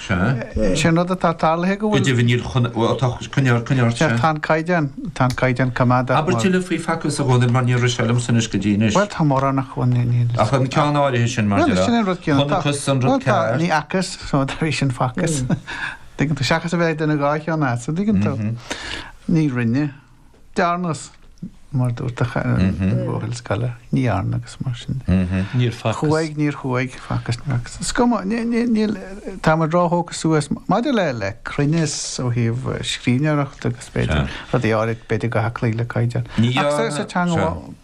Sin an rud atá tarlaithe go bhfuil. deimhnithe chun coinneáil sé. Tá an caighdeán, tá an caighdeán coimeádach. Abair tuilleadh faoi facthas, a Dhónaill mar níor rith sé liomsa anois go dtí anois. Bhuel, tá mórán ach bhuel, ní, ní. Ach an ceann áirithe sin mar Bhuel, sin an rud céanna. Chonacthas an rud cearr. Ní facthas, so tar éis sin facthas. Dtuigeann tú, seachas a bheith ag déanamh dhá cheann astu, dtuigeann tú. Ní rinne. Dearnas, mar a dúirt a chara, an buachaill scoile, ní dhearna agus mar sin de. Níor facthas. Chuaigh, níor chuaigh, facthas, níor facthas. Is cuma, níl, tá muid róthógtha suas maidir le le cruinneas ó thaobh scríbhneoireachta agus b'fhéidir rudaí áirithe b'fhéidir go bhfuil ag cloí le caighdeán. Ní dhearna. Ach sa teanga.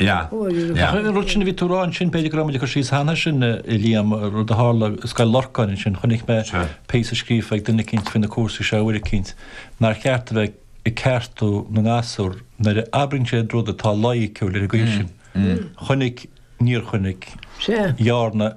Ach an rud sin a bhí tú a rá ansin, b'fhéidir go raibh muid ag cur síos air cheana sin, a Liam, rud a tharla i Scoil Lorcáin ansin, chonaic mé píosa scríofa ag duine eicínt faoi na cúrsaí seo uair eicínt, nár cheart a bheith ag ceartú na ngasúr nuair a abraíonn siad rud atá loighiciúil ar an gcaoi sin. Chonaic, níor chonaic, dhearna.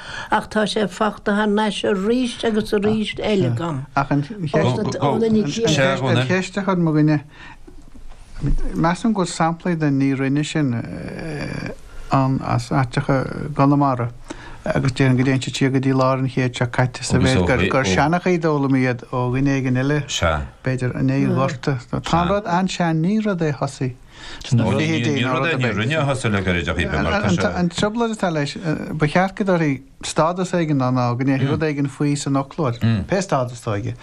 Ach tá sé fachta thar nais arís agus arís eile agam. Ach an cheist a chuir mo dhuine, measaim go bhfuil samplaí den ní rinne sin ann as áiteacha i gConamara agus déan go dtéann siad siar go dtí lár an chéid seo caite sa mhéid gur gur seanachaí a d'fhoghlaim iad ó dhuine éigin eile, b'fhéidir, i ndiaidh an Ghorta. Tá an rud an-sean, ní rud é a thosaigh. Sna fichidí ní rud é, ní rinne a thosaigh le gairid ar bith mar tá sé. An trioblóid atá leis, ba cheart go dtabharfaí stádas éigin dó ná go ndéanfaí rud éigin faoi san fhoclóir, pé stádas atá aige.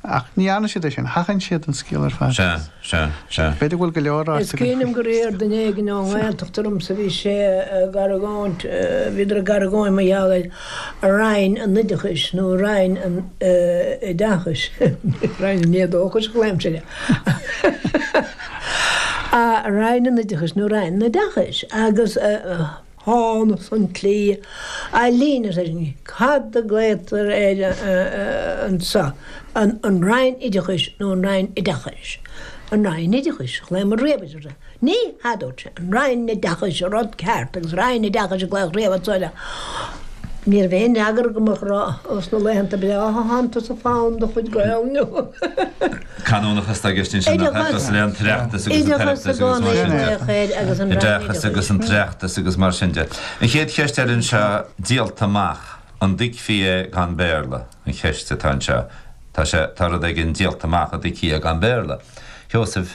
Ach ní dhearna siad é sin, sheachain siad an scéal ar fad. Sea, sea, sea. B'fhéidir i go leor áit. Is cuimhin liom gur iarr duine éigin ón nGaeltacht ormsa, bhí sé ag argóint, bhíodar ag argóint mar gheall ar Roinn an Oideachais nó Roinn an Oideachais, Roinn an Éadóchais a ghlaoimse air. a Roinn an Oideachais nó Roinn an Oideachais agus tháinig sé ansin ar an líne, Cad a glaotar air anseo? An Roinn Oideachais nó an Roinn Oideachais? An Roinn Oideachais a ghlaomar riamh air anseo. Ní hea, a dúirt sé, An Roinn Oideachais an rud ceart agus Roinn Oideachais a glaodh riamh anseo air. Ní raibh aon fhreagra agam ach sna laethanta bhí fonn de chuid Gael Linn. Canúnachas atá i gceist ansin nach oideachas le an tOireachtas agus an tOireachtas agus mar sin de. Oideachas agus an tOireachtas agus mar sin de. An chéad cheist eile anseo, díolta amach, an dtuigfí é gan Béarla? an cheist atá anseo. Tá sé, tá rud éigin díolta amach, an dtuigfí é gan Béarla? A Sheosaimh.